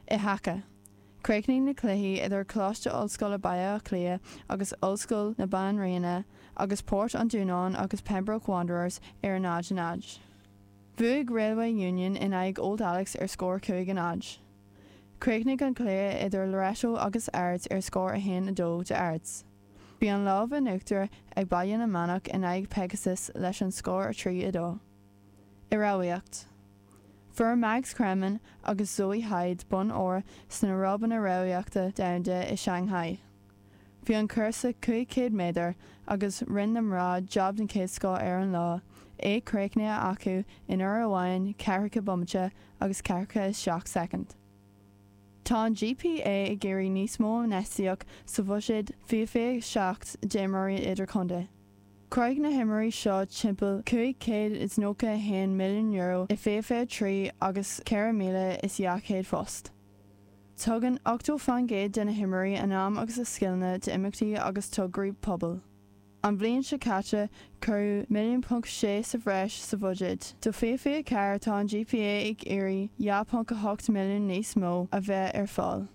I haca, chríochnaigh na cluichí idir Coláiste Ollscoile Baile Átha Cliath agus Ollscoil na Banríona agus Port an Dúnáin agus Pembroke Wanderers ar a náid a náid. Bhuaigh Railway Union in aghaidh Old Alex ar scór cúig a náid. Chríochnaigh an cluiche idir Loreto agus Ards ar scór a haon a dó d'Ards. Bhí an lámh in uachtar ag Baile na Manach in aghaidh Pegasus leis an scór a trí a dó. I rámhaíocht. Fuair Mags Cremen agus Zoe Hyde bonn óir sna ráibeanna rámhaíochta domhanda i Shanghai. Bhí an cúrsa 500 méadar agus rinne na mná jab den chéad scoth ar an lá, é críochnaithe acu in uair amháin, ceathracha bomaite agus ceathracha is seacht soicind. Tá an GPA ag iarraidh níos mó infheistíocht sa bhuiséad 2027 d'imreoirí idirchontae. Chruthaigh na himreoirí seo timpeall €591 milliún i 2023 agus 4,200 phost. Tugann 80 faoin gcéad de na himreoirí a n-am agus a scileanna d'imeachtaí agus tograí pobail. An bhliain seo caite, cuireadh 1.6 milliún sa bhreis sa bhuiséad do 2024, tá an GPA ag iarraidh 2.8 milliún níos mó a bheith ar fáil.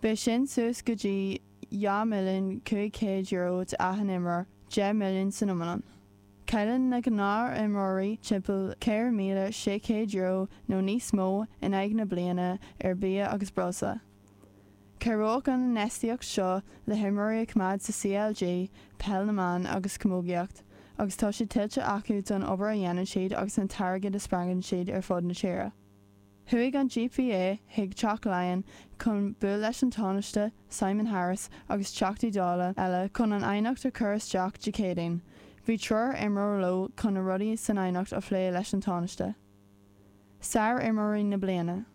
Beidh sin suas go dtí €2,500,000 d'achan imreoir, deich milliún san iomlán. Cailleann na gnáthaimreoirí timpeall €4,600 nó níos mó in aghaidh na bliana ar bhia agus breosla. Cabhróidh an infheistíocht seo le himreoirí a choimeád sa CLG, Peil na mBan agus Camógaíocht, agus tá sé tuillte acu don obair a dhéanann siad agus an t-airgead a spreagann siad ar fud na tíre. Chuaigh an GPA chuig Teach Laighean chun buail leis an Tánaiste, Simon Harris, agus Teachtaí Dála eile chun an aighneacht a chur isteach Dé Céadaoin. Bhí triúr imreoir leo chun na rudaí san aighneacht a phlé leis an Tánaiste. Sárimreoirí na bliana.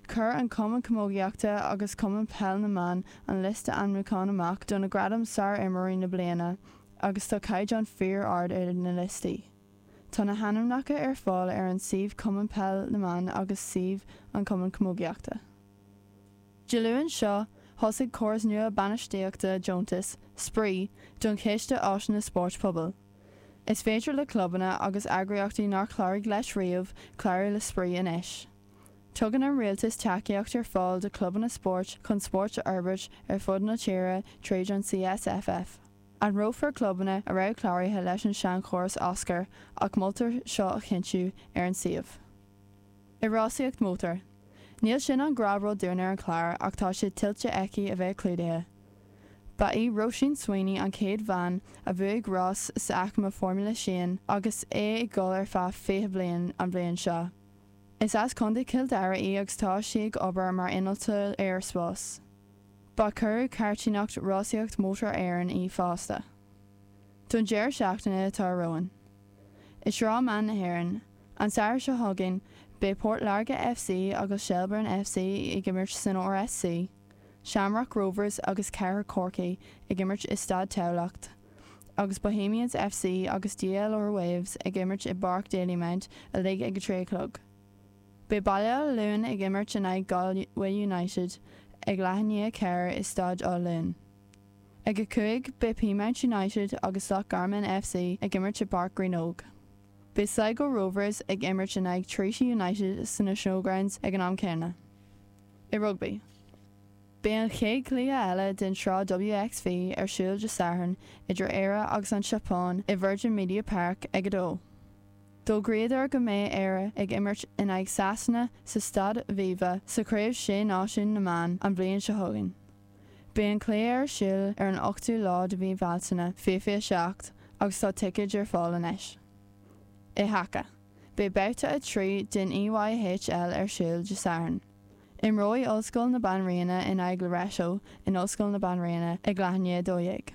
Chuir an Cumann Camógaíochta agus Cumann Peil na mBan an liosta ainmiúcháin amach do na gradaim Sárimreoirí na Bliana agus tá caighdeán fíor-ard ar na liostaí. Tá na hainmneacha ar fáil ar an suíomh Cumann Peil na mBan agus suíomh an Cumann Camógaíochta. Dé Luain seo thosaigh córas nua bainistíochta deontais, spraoi, don Chiste Áiseanna Spóirt Pobail. Is féidir le clubanna agus eagraíochtaí nár chláraigh leis riamh clárú le spraoi anois. Tugann an rialtas tacaíocht ar fáil do chlubanna spóirt chun spórt a fhorbairt ar fud na tíre tríd an CSFF. Eagrófar clubanna a raibh cláraithe leis an seanchóras ar oscailt ach moltar seo a chinntiú ar an suíomh. I rásaíocht mótair. Níl sin i ngrá leo dúinn ar an chlár ach tá sé tuillte aici a bheith clúdaithe. Ba í Róisín Sweeney an chéad bhean a bhuaigh rás sa aicme Formula Sheane agus é ag dul ar feadh 20 bliain an bhliain seo. Is as Contae Chill Dara í agus tá sí ag obair mar innealtóir aeraspás. Ba curadh cartúnacht rásaíocht mótar Éireann í fosta. Don deireadh seachtaine atá romhainn, i Sraith Mná na hÉireann, an Satharn seo chugainn, beidh Port Láirge FC agus Shelbourne FC ag imirt san RSC, Shamrock Rovers agus Cathair Chorcaí ag imirt i Staid Thamhlachta, agus Bohemians FC agus DLR Waves ag imirt i bPáirc Dalymount uilig ag a trí a chlog. Beidh Baile Átha Luain ag imirt in aghaidh Galway United ag leath i ndiaidh a ceathair i Staid Átha Luain. Ag a cúig, beidh Peamount United agus Loch Garman FC ag imirt i bPáirc Ghraínnóg. Beidh Sligo Rovers ag imirt in aghaidh Treaty United sna Showgrounds ag an am céanna. I rugbaí, beidh an chéad chluiche eile den tsraith WXV ar siúl Dé Sathairn idir Éire agus an tSeapáin i Virgin Media Park ag a dó. D'fhógraíodar go mbeidh Éire ag imirt in aghaidh Sasana sa Staid Aviva sa Chraobh Sé Náisiún na mBan an bhliain seo chugainn. Beidh an cluiche ar siúl ar an 8ú lá de mhí Bhealtaine 2027 agus tá ticéid ar fáil anois. I haca, beidh babhta 3 den EYHL ar siúl Dé Sathairn. Imreoidh Ollscoil na Banríona in aghaidh Loreto in Ollscoil na Banríona ag leath i ndiaidh a dó dhéag.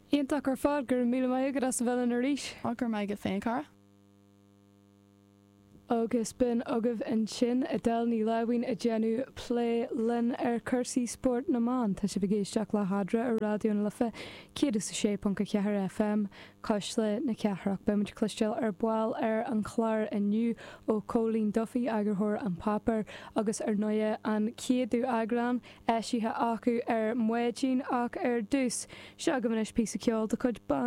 Iontach ar fad! Go raibh míle maith agat as a bheith linn arís! Ach go raibh maith agat féin, a chara. Agus b'in agaibh ansin Edel Ní Láimhín ag déanamh plé linn ar cúrsaí spóirt na mban. Tá sibh ag éisteacht le Hadra ar Raidió na Life 106.4 FM, Cuisle na Cathrach. Beidh muid ag cloisteáil ar ball ar an chlár inniu ó Cóilín Duffy, eagarthóir An Páipéar, agus ar ndóigh, an céadú eagrán eisithe acu ar maidin ach ar dtús, seo agaibh anois píosa ceoil de chuid Band.